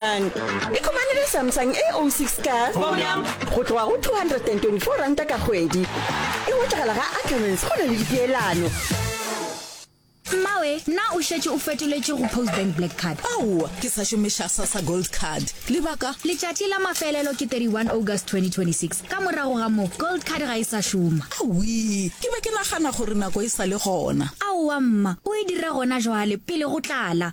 Samsung. Ikhumanele Samsung A06 ka go tloga go R224 ka kgwedi. E hwetšagala ga Ackermans go na le dipeelano. Mmawe, na o šetše o fetoletše go Postbank Black Card? Aowa, ke sa šomiša Sassa Gold Card. Lebaka? Letšatši la mafelelo ke 31 August 2026. Ka morago ga moo, Gold Card ga e sa šoma. Awii, ke be ke nagana gore nako e sa le gona. Aowa mma, o e dira gona jwale, pele go tlala.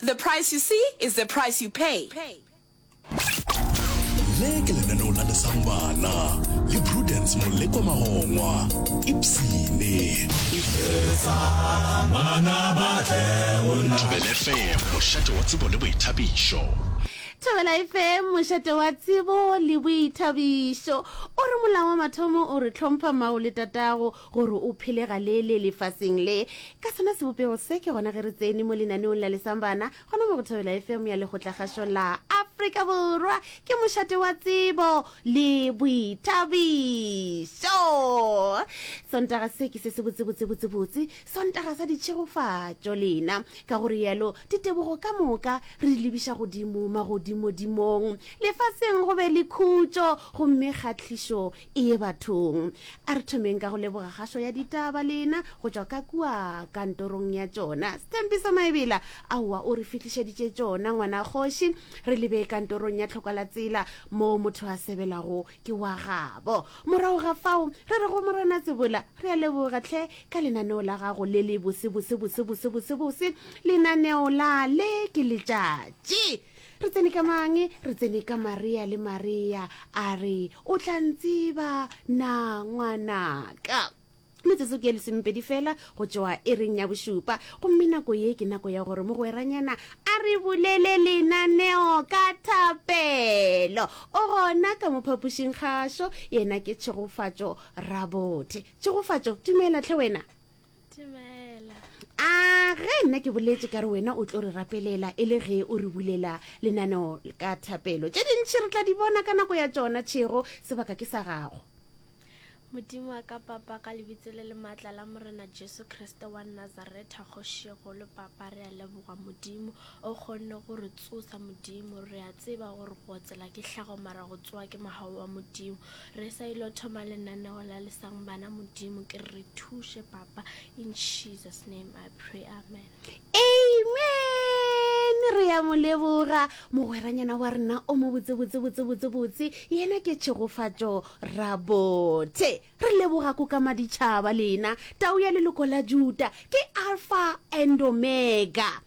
The price you see is the price you pay. Le ke lenaneo la lesang bana le Prudence Moleko Magongwa, Ipsene. Thobela FM, mošate wa tsebo le boithabišo. Thobela FM, mošate wa tsebo le boithabišo. O re molao wa mathomo o re tlhompha mao le tatago, gore o phele galele lefaseng le. Ka sona sebopego se, ke gona ge re tsene mo lenaneong la Lesang Bana, gona mo go Thobela FM ya Lekgotlakgašo la Afrika Borwa. Ke mošate wa tsebo le boithabišo. Sontaga se ke se se botsebotsebotsebotse, Sontaga sa ditšhegofatšo lena. Ka go realo, ditebogo ka moka re di lebiša godimo magodimodimong. Lefaseng go be le khutšo, gomme kgahlišo Eye bathong, a re thomeng ka go leboga kgašo ya ditaba lena go tšwa ka kua kantorong ya tšona. Stampiso Maebela, aowa o re fihlišeditše tšona ngwana kgoši. Re lebe kantorong ya Tlhokalatsela moo motho a sebelago ke wa gabo. Morago ga fao re re go Morena Tsebola, re a leboga tlhe ka lenaneo la gago le le bosebosebosebosebosebose, lenaneo la Le ke Letšatši. Re tsene ka mang? Re tsene ka Maria le Maria a re, O tla ntseba na ngwanaka? Metsotso ke ye lesomepedi fela go tšoa e reng ya bošupa, gomme nako ye ke nako ya gore mogweranyana a re bulele lenaneo ka thapelo. O gona ka mo phapošing gašo, yena ke tšhegofatšo rabothe. Tšhegofatšo, dumela tlhe wena. Timela. A ge nna ke boletse ka re wena o tlo re rapelela e le ge o re bulela lenaneo ka thapelo. Tše dintši re tla di bona ka nako ya tšona, Tšhego, sebaka ke sa gago. Modimo wa ka Papa, ka lebitso le le maatla la Morena Jesu Kriste wa Nazaretha, Kgoši ye kgolo, Papa, re a leboga, Modimo, O kgonne go re tsosa, Modimo. Re a tseba gore go otsela ke hlago, mara go tsoa ke mogau wa Modimo. Re sa ilo thoma lenaneo la lesang bana, Modimo, ke re re thuše, Papa. In Jesus' name I pray. Amen. Amen! Re ya mo leboga, mogweranyana wa rena o mo botse, botse, botse, botse, botse. Yena ke tšhegofatšo rabothe. Re leboga ko ka maditšhaba lena, tau ya leloko la Juta. Ke Alfa and Omega.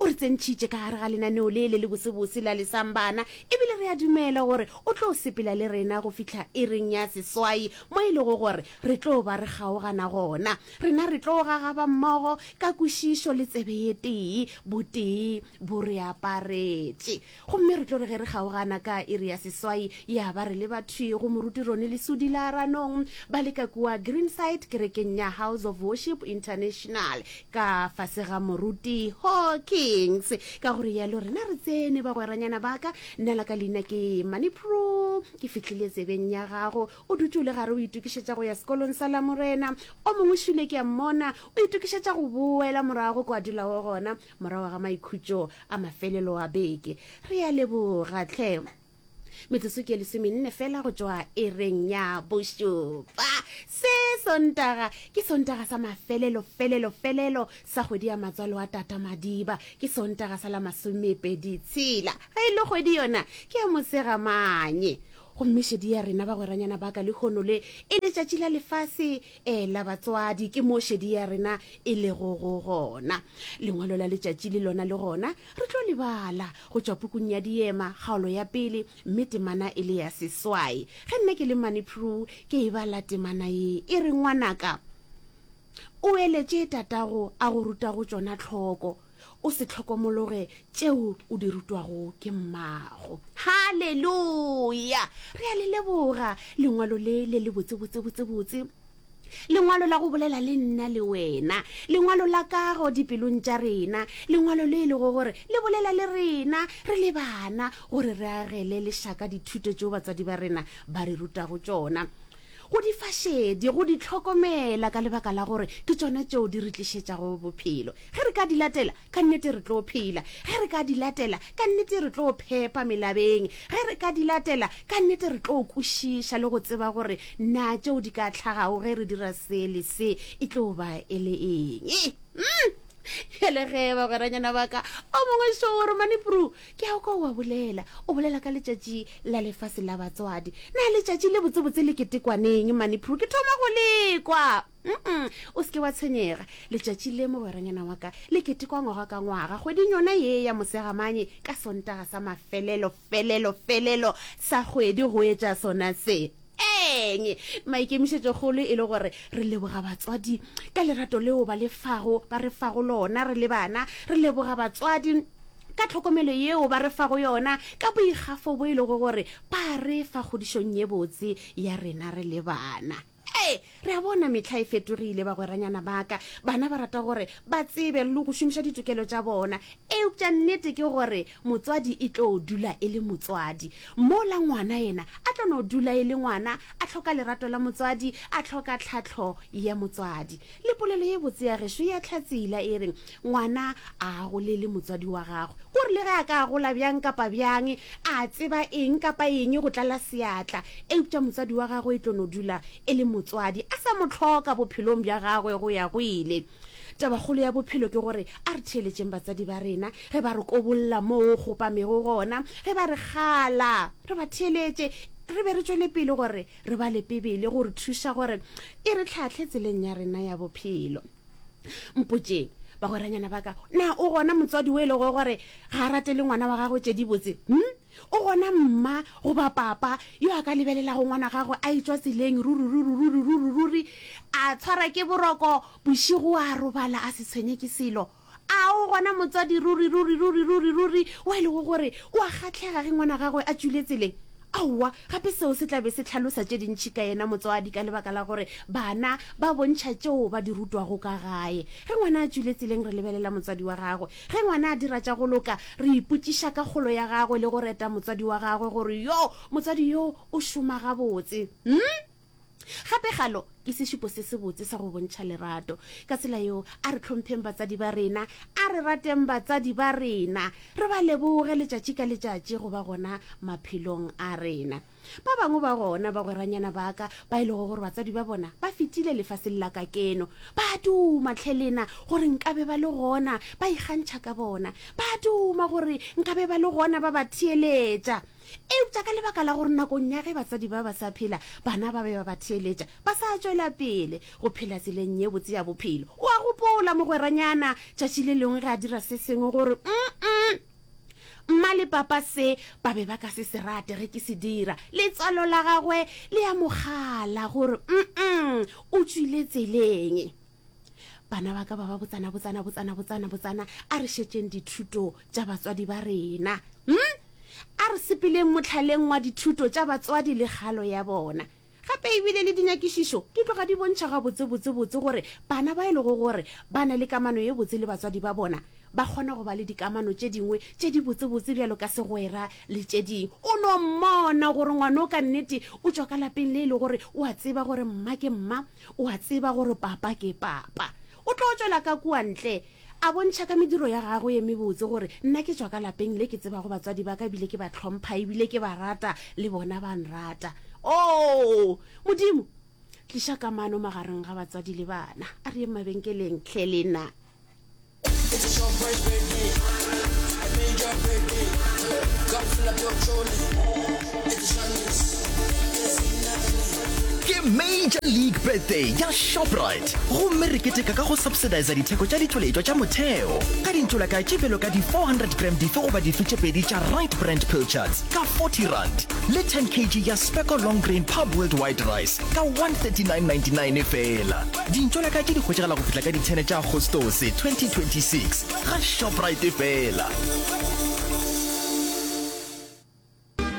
O re tsentšhitše ka gare ga lenaneo le le le bosebose la lesambana ebile re a dumela gore o tlo sepela le rena go fihla ireng ya seswai mo e lego gore re tlo ba re kgaogana gona. Rena re tlo gagaba mmogo ka kwešišo le tsebe ye tee, botee bo re aparetše. Gomme re tlo re ge re kgaogana ka iri ya seswai, ya ba re le bathwi go Moruti Ronnie Lesudi la Ranong, ba le ka kua Greenside kerekeng ya House of Worship International, ka fase ga Moruti Hawkins. Ka go rialo rena re tsene, bagweranyana ba ka. Nna la ka leina ke Mani Prue. Ke fihlile tsebeng ya gago. O dutše o le gare o itokišetša go ya Sekolong sa Lamorena. O mongwe šule ke a mmona o itokišetša go boela morago ko a dulago gona. morago ga maikhutšo a mafelelo a beke re a leboga tlhe metsotso ke lesemenne fela go tšwa ereng ya bošupa se sontaga ke sontaga sa mafelelo felelo felelo sa kgwedi ya matswalo a tata madiba ke sontaga sa la masomepedi tshela ga e le kgwedi yona ke ya mosegamanye gomme šedi ya rena bagweranyana baka lehono le e letšatši la lefase Ela batswadi, ke mo šedi ya rena e lego go gona. Lengwalo la letšatši le lona le gona re tlo le bala go tšwa pukung ya Diema, kgaolo ya pele, mme temana e le ya seswai. Ge nna ke le mane Peru, ke e bala temana ye e re, Ngwanaka, o eletše tatago a go rutago tšona tlhoko. o se tlhokomologe tšeo o di rutwago ke mmago halleluya re a le leboga lengwalo le le le botsebotsebotsebotse lengwalo la go bolela le nna le wena lengwalo la kago dipelong tša rena lengwalo le e lego gore le bolela le rena re le bana gore re agele lešaka dithuto tšeo batswadi ba rena ba re rutago tšona Go di fa šedi, go di hlokomela ka lebaka la gore ke tšona tšeo di re tlišetšago bophelo. Ge re ka di latela, ka nnete re tlo phela. Ge re ka di latela, ka nnete re tlo phepa melabeng. Ge re ka di latela, ka nnete re tlo kwešiša le go tseba gore na tšeo di ka tlhagago ge re dira se le se e tlo ba e le eng. Umm! Bjale ge bagweranyana ba ka o mongwe šo o re, Mane Prue, Ke a kwa o a bolela, o bolela ka letšatši la lefase la batswadi. Na letšatši le botsebotse le ketekwaneng, Maniprue? Ke thoma go le kwa. Um-um, o se ke wa tshwenyega. Letšatši le, mogweranyana wa ka, le ketekwa ngwaga ka ngwaga, kgweding yona ye ya Mosegamane, ka Sontaga sa mafelelo, felelo, felelo sa kgwedi go etša sona se. Eng? Maikemišetšokgolo e le gore re leboga batswadi ka lerato leo ba le fago, ba re fago lona re le bana. Re leboga batswadi. ka tlhokomelo yeo ba re fago yona, ka boikgafo bo e lego gore ba re fa kgodišong ye botse ya rena re le bana. Ee, re a bona mehla e fetogile, bagweranyana ba ka. Bana ba rata gore ba tsebe le go šomiša ditokelo tša bona. Eupša nnete ke gore motswadi e tlo dula e le motswadi, mola ngwana yena a tlo no dula e le ngwana, a hloka lerato la motswadi, a hloka tlhahlo ya motswadi. Le polelo ye botse ya gešo ya Hlatsela e re, Ngwana a agolele motswadi wa gagwe. Ko re le ge a ka agola bjang kapa bjang, a tseba eng kapa eng go tlala seatla, eupša motswadi wa gagwe e tlo no dula e le motswadi, a sa mo hloka bophelong bja gagwe go ya go ile. Tabakgolo ya bophelo ke gore a re theeletšeng batswadi ba rena ge ba re kobolla moo go kgopamego gona, ge ba re kgala, re ba theeletše re be re tšwele pele gore re ba le Bibele go re thuša gore e re hlahle tseleng ya rena ya bophelo. mpotšeng bagweranyana ba ka na o gona motswadi o e lego gore ga a ratele ngwana wa gagwe tše dibotse hm o gona mma goba papa yo a ka lebelelago ngwana gagwe a etswa tseleng ruriruriruriruriruri a tshwara ke boroko bošigo a robala a se tshwenye ke selo A o gona motswadi ruri, ruri, ruri, ruri, ruri, o e lego gore o a kgahlega ge ngwana gagwe a tšwile tseleng? Aowa, gape seo se tla be se hlalosa tše dintši ka yena motswadi ka lebaka la gore bana ba bontšha tšeo ba di rutwago ka gae. Ge ngwana a tšwile tseleng re lebelela motswadi wa gagwe. Ge ngwana a dira tša go loka re ipotšiša ka kgolo ya gagwe le go reta motswadi wa gagwe gore yoo motswadi yoo o šoma gabotse. Umm! Gape galo ke sešupo se sebotse sa go bontšha lerato. Ka tsela yeo, a re hlompheng batsadi ba rena. A re rateng batsadi ba rena, re ba leboge letšatši ka letšatši go ba gona maphelong a rena. Ba bangwe ba gona bagweranyana ba ka ba e lego gore batsadi ba bona ba fetile lefaseng la ka keno, ba a duma hle le na gore nka be ba le gona ba ikgantšha ka bona. Ba a duma gore nka be ba le gona ba ba theeletša. Eupša ka lebaka la gore nakong ya ge batsadi ba ba sa phela bana ba be ba ba theeletša, ba sa tšwela pele go phela tseleng ye botse ya bophelo. O a gopola mogweranyana tšatši le lengwe ge a dira se sengwe gore, Umm-mm! Mma le Papa se ba be ba ka se se rate ge ke se dira. Letswalo la gagwe le a mo kgala gore, Umm-mm! O tšwile tseleng. bana ba ka ba ba botsana botsana botsana botsana botsana a re šetšeng dithuto tša batswadi ba rena hmm? a re sepeleng motlhaleng wa dithuto tša batswadi le kgalo ya bona gape ebile le dinyakišišo di tloga di bontšha gabotsebotsebotse gore bana ba e lego gore ba na le kamano ye botse le batswadi ba bona ba kgona go ba le dikamano tše dingwe tše di botsebotse bjalo ka segwera le tše ding o no mmona gore ngwane o ka nnete o tšwa ka lapeng le e le gore o a tseba gore mma ke mma O a tseba gore Papa ke Papa. O tlo tšwela ka kua ntle, a bontšha ka mediro ya gagwe ye mebotse gore nna ke tšwa ka lapeng le ke tsebago batswadi ba ka ebile ke ba hlompha ebile ke ba rata, le bona ba nrata. Oo, Modimo! Tliša kamano magareng ga batswadi le bana. A re yeng mabenkeleng, hle, le na. Ke Major League Birthday ya Shoprite gomme re keteka ka go subsidisa ditheko tša ditšweletšwa tša motheo ka dintšolaka tše bjalo ka di-400 gram dife goba dife tše pedi tša Right Brand Pilchards ka R40 le 10 kg ya Specco Long Grain Pub Worldwide Rice ka R139.99 fela. Dintšo la ka ke di hwetšagala go fihla ka di 10 tša Agostose 2026 ga Shoprite fela.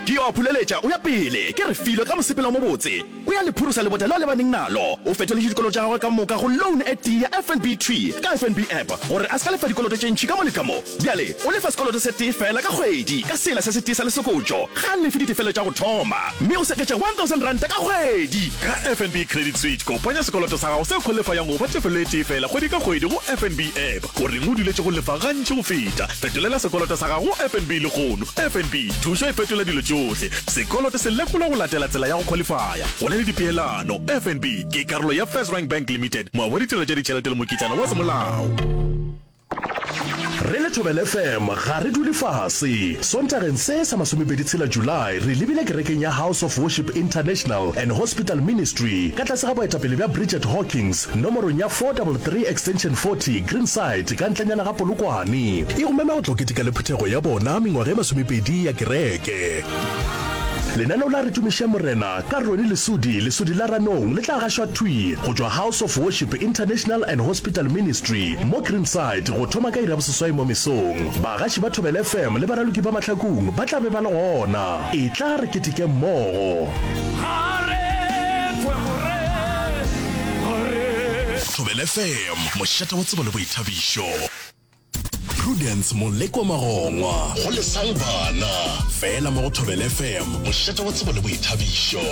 Ke yo a phuleletša, o ya pele, ke re filo ka mosepelo o mobotse, o ya le phurusa lebota le a lebaneng nalo. O fetoletše dikoloto tša gagwe ka moka go loan e tee ya FNB Tree ka FNB App gore a se ka lefa dikoloto tše ntši ka mo le ka mo. Bjale O lefa sekoloto se tee feela ka kgwedi ka sela se se tee sa lesokotšo. Ga a lefe ditefelo tša go thoma, mme o seketša R1,000 ka kgwedi. Ka FNB Credit Suite, kopanya sekoloto sa gago se kholefayang go fa tefelo e tee feela kgwedi ka kgwedi go FNB app. O reng o duletše go lefa gantši go feta? Fetolela sekoloto sa gago go FNB lehono. FNB, thušo e fetola dilo tšohle. Sekoloto se lekolwa go latela tsela ya go kholefaya. Go na le dipeelano. FNB ke karolo ya FirstRand Bank Limited, moabo wa ditiro tša ditšhelete le mokitlana wa semolao. Re le Thobela FM ga re dule fase. Sontageng se sa masomepedi tshela July re lebile kerekeng ya House of Worship International and Hospital Ministry ka tlase ga boetapele bja Bridget Hawkins nomorong ya 433 extension 40 Greenside ka ntlanyana ga Polokwane. E go mema go tlo keteka le phuthego ya bona mengwaga e masomepedi ya kereke. Lenaneo la Re Tumišeng Morena Ka Ronnie Lesodi, Lesodi la Ranong, le tla gašwa thwi go tšwa House of Worship International and Hospital Ministry mo Greenside go thoma ka iri ya boseswai mo mesong. Bagaši ba Thobela FM le baraloki ba Mahlakung ba tla be ba le gona. Etla re keteke mmogo! Thobela FM, mošate wa tsebo le boithabišo. Prudence Molekwa Magongwa go lesang bana fela mo go Thobel FM, mošate wa tsebo le boithabišo.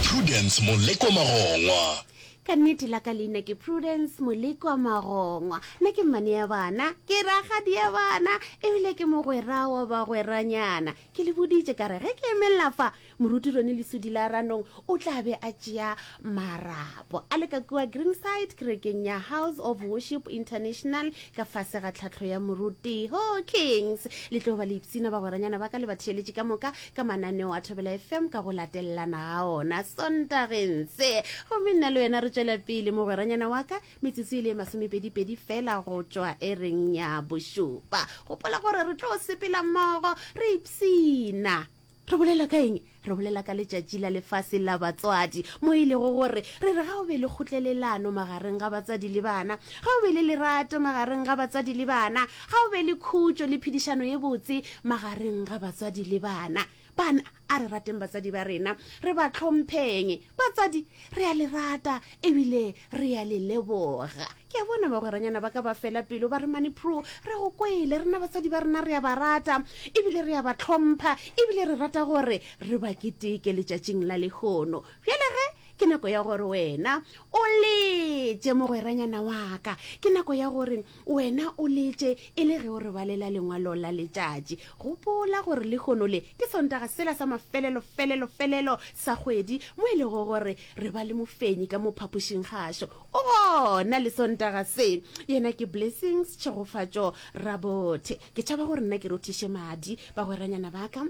Prudence Molekwa Magongwa. Ka nnete la ka leina ke Prudence Molekwa Magongwa. Nna ke mmane ya bana, ke rakgadi ya bana ebile ke mogwera wa bagweranyana. Ke le boditše ka re ge ke emelela fa Moruti Ronnie Lesudi la Ranong o tla be a tšea marapo a le ka kua Greenside kerekeng ya House of Worship International ka fase ga tlhahlo ya Moruti Hawkins. Le tlo ba le ipshina bagweranyana ba ka le batheeletši ka moka ka mananeo a Thobela FM ka go latelelana ga ona Sontageng se. Gomme nna le wena re tšwela pele, mogweranyana wa ka, metsotso e le e masomepedipedi fela go tšwa ereng ya bošupa. Gopola gore re tlo sepela mmogo re ipshina. Re bolela ka eng? Re bolela ka letšatši la lefase la batswadi, mo e lego gore re re ga o be le kgotlelelano magareng ga batsadi le bana, ga o be le lerato magareng ga batsadi le bana, ga o be le khutšo le phedišano ye botse magareng ga batswadi le bana. Bana, a re rateng batsadi ba rena, re ba tlhompheng. Batsadi, re a le rata ebile re a le leboga. ke a bona bagweranyana ba ka ba fela pelo ba re manipro re go kwele rena basadi ba rena re a ba rata ebile re a ba tlhompha ebile re rata gore re ba keteke letšatšing la lekgono bjale ge ke nako ya gore wena o letse mogweranyana waka ke nako ya gore wena o letse e le ge o re balela lengwalo la letšatši gopola gore lekgono le ke sontaga sela sa mafelelo felelo felelo sa kgwedi mo e lego gore re ba le mofenyi ka mo phapošing gašo O gona le Sontaga se. Yena ke Blessings Tšhegofatšo Rabothe. Ke tšhaba gore nna ke rothiše madi, bagweranyana ba ka.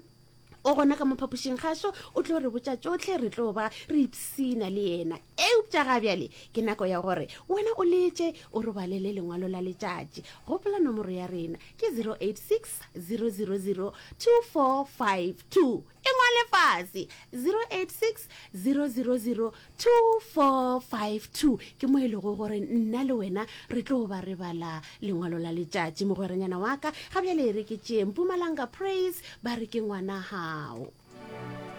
O gona ka mo phapošing gašo, o tlo re botša tšohle, re tlo ba re ipshina le yena. Eupša ga bjale ke nako ya gore wena o letše, o re balele lengwalo la letšatši. Gopola nomoro ya rena ke 086 000 2452. E ngwale fase, 0860002452, ke mo e lego gore nna le wena re tlo ba re bala lengwalo la letšatši. Mogweranyana wa ka ga bjale e re ke tšee Mpumalanga Praise ba re ke ngwana gao.